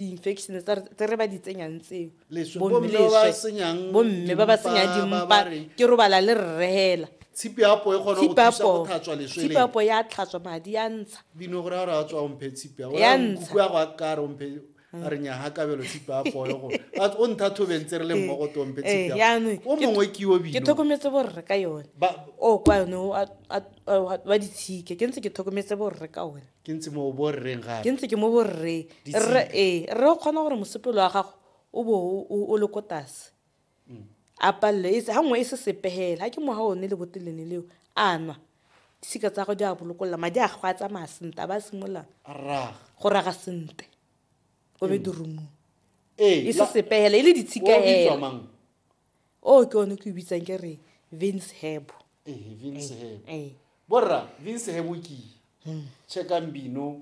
di-infection tse re ba di tsenyang tseo bomme ba ba tsenyang dimpa ke robala le rrehela tshipi ya apo e kgona go thusa go tlhatswa leswele tshipi ya apo ya tlhatswa madi ya ntsha dino gore a re a tswa omphe tshipi ya o ya nkuku ya go a kare omphe a re nya ha kabelo tshipi ya apo yo go a o ntha thobeng tse re le mmogo to omphe tshipi ya o mongwe ke yo bino ke tlhokometse bo rre ka yone o kwa yone wa ditshike ke ntse ke tlhokometse bo rre ka one ke ntse mo borreng gape ke ntse ke mo borre rre ee rre o kgona gore mosepelo wa gago o bo o le ko tase mm. a palelo e ga nngwe e se sepegela ga ke moga one le botelene leo a nwa disika tsa go di a bolokolola madi a go a tsamaya sente a ba simolola go raga sente o be mm. dirumong e se sepegela e le ditshikaela o ke one ke o bitsang ke re vince hebo Ehe, Vince Eh, Hebo. eh. borra vince hebo ke checkang bino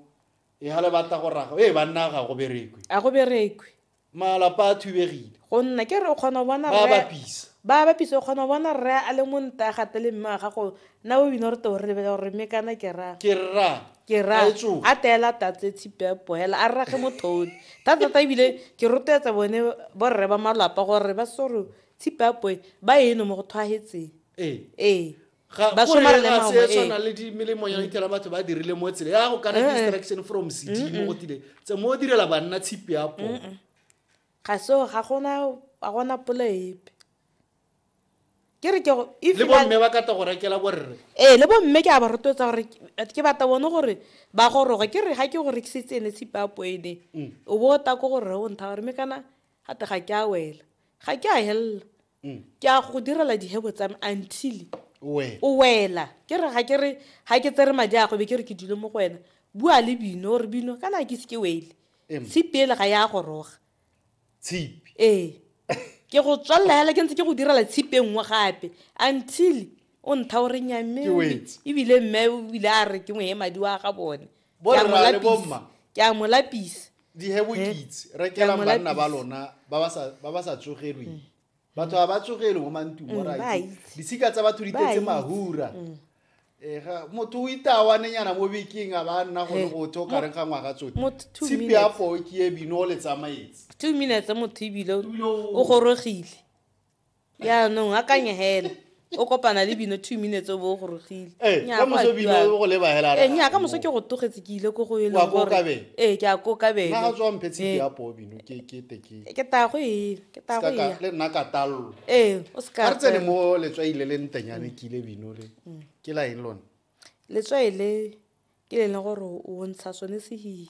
e ga le batla go raga ee banna ga go berekwe a go berekwe malapa a thubegile go nna ke re o kgona go bona ba rre- bapisa ba bapisa o kgona go bona rre a le mo nta gate le mme wa gago na o bino re teo re lebele gore mme kana ke ra ke rra ke ra a teela tatle tshipepo hela a rrage mothone thata-thata ebile ke rotloetsa bone borre ba malapa gore ba sore tshipepo e ba eno mo go thwagetseng ee ba somare le maomo ee tshwana le melemo ya itela batho ba dirile mo tsela ya go kana eh, eh. distraction from CD mo go tile tse mo direla banna tshipepo ga so ga gona ga gona pole epe ke re ke go- if le na- bomme ba kata go rekela borre ee le bomme ke a ba rotloetsa gore ke- ke batla bone gore ba goroge ke re ga ke go rekisetse ene tshipapo ene o bo o ta ko gore o ntha gore me kana gate ga ke a wela ga ke a helela ke a go direla dihebo tsa me until we o wela ke re ga ke re ga ke tsere madi a go be ke re ke dule mo go wena bua le bino gore bino kana ke se ke wele Em. tshipi ele ga ya goroga tshipi ee ke go tswalela hela ke ntse ke go direla tshipi e nngwe gape until o ntha o re nyamme ebile mme o bile a re ke moye madi wa ga bone ke a mo lapisa dihebokitse rekelang banna ba lona ba ba sa tsogelweng batho ga ba tsogele mo mantung mm, orit disika tsa batho di tetse mahura mm. eh, motho o itawanenyana mo bekeng a ba nna gone go tho kareng ga ngwaga tsote tshipi ya poo ke e bino o le tsamaetse two minutes motho ebile o gorogile yaanong a kanye hela o kopana le bino two minutes o bo o gorogile ee ka moso bino o go leba hela ee nya ka moso ke go togetse ke ile ko go e leng gore ee ke a ko ka bele na tswa mphe tshiti ya po bino ke ke te ke ke ta go e ke ta go ya le nna ka tallo ee o se ka re tsene mo le tswa ile le ntenyane ke ile bino le ke la eng lona le tswa ile ke le leng gore o ntsha sone se hi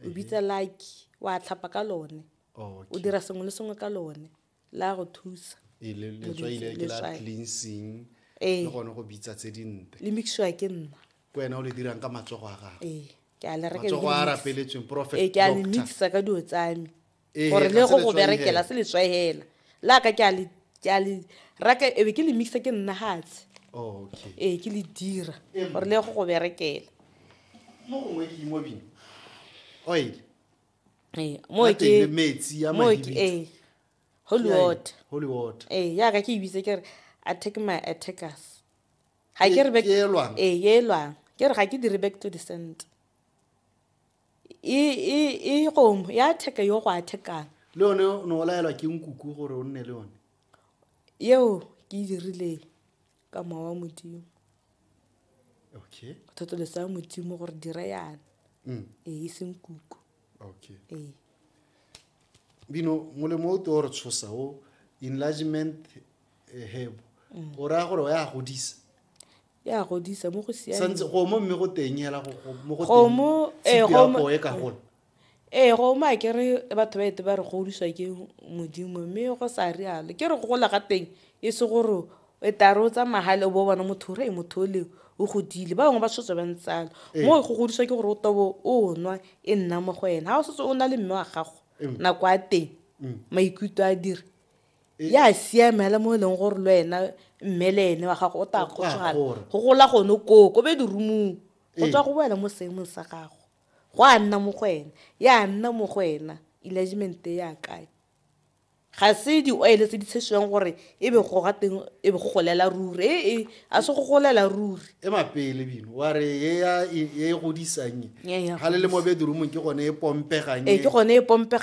o bitsa lucky wa tlhapa ka lone o dira sengwe le sengwe ka lone la go thusa Ee, le- Modimo, letswai le ke la letswai. cleansing Ee. le gone go bitsa tse dinte le mixiwa ke nna ke wena o le dirang ka matsogo a gago ee ke a le reka matsogo a rapeletsweng prophet ee ke a le doctor mixer ka dilo tsame Ee, gore ga le se go go letswai berekela hela. se letswai hela la ka ke a le- ke a le raka ebe ke le mixa ke nna gatshe Oh, okay ee ke le dira Ee. gore le go go berekela mo gongwe ke imobine oil ee mo Ga teng le ke metsi a mo ke mahibitso. ee holy Ke a eng? water holy water ee yaka ke ebitse ke re attack my attackers ga Ke- ke re back- ke elwang? ee ye elwang ke re ga ke dire back to the cent e e e gomo ya attack yo go attackang le yone o ne o laelwa ke nkuku gore o nne le yone yeo ke e dirileng ka mowa wa modimo okay go thotolosa ya modimo gore dire yana mm. ee e seng kuku okay ee bino molemo o teo re tshosa o enlargement eh, hebo mm. o raya gore o ya godisa ya godisa mo go siameng santse gomo mme go teng hela mo go teng gomo eh, e ka gola Ee, go uma ke re batho ba ete ba re godiswa ke modimo mme go sa rialo ke re go gola ga teng e se gore e tare o tsamaya gale o bo bona motho re motho o le o godile ba bangwe ba setse ba ntsalo mo go godiswa ke gore o tobo o nwa e nna mo go ena ga o setse o na le mme wa gago nako a teng maikutlo a dire ya siame fela mo e leng gore le wena mme le ene wa gago o tla kgotsogala go gola gone koo ko be dirumong go tswa go boela mo seemong sa gago Go a nna mo go ene. Ya nna mo go ena. Enlargement e ya kae? Ga se di-oil tse di tshesiwang gore e be go ga teng e be go golela ruri. E e, a se go golela ruri. e mapele bino wa re ye ya e e godisang Ye ya ga le le mo godisa. bedroomong ke gone e pompegang Ee, e. ke gone e pompega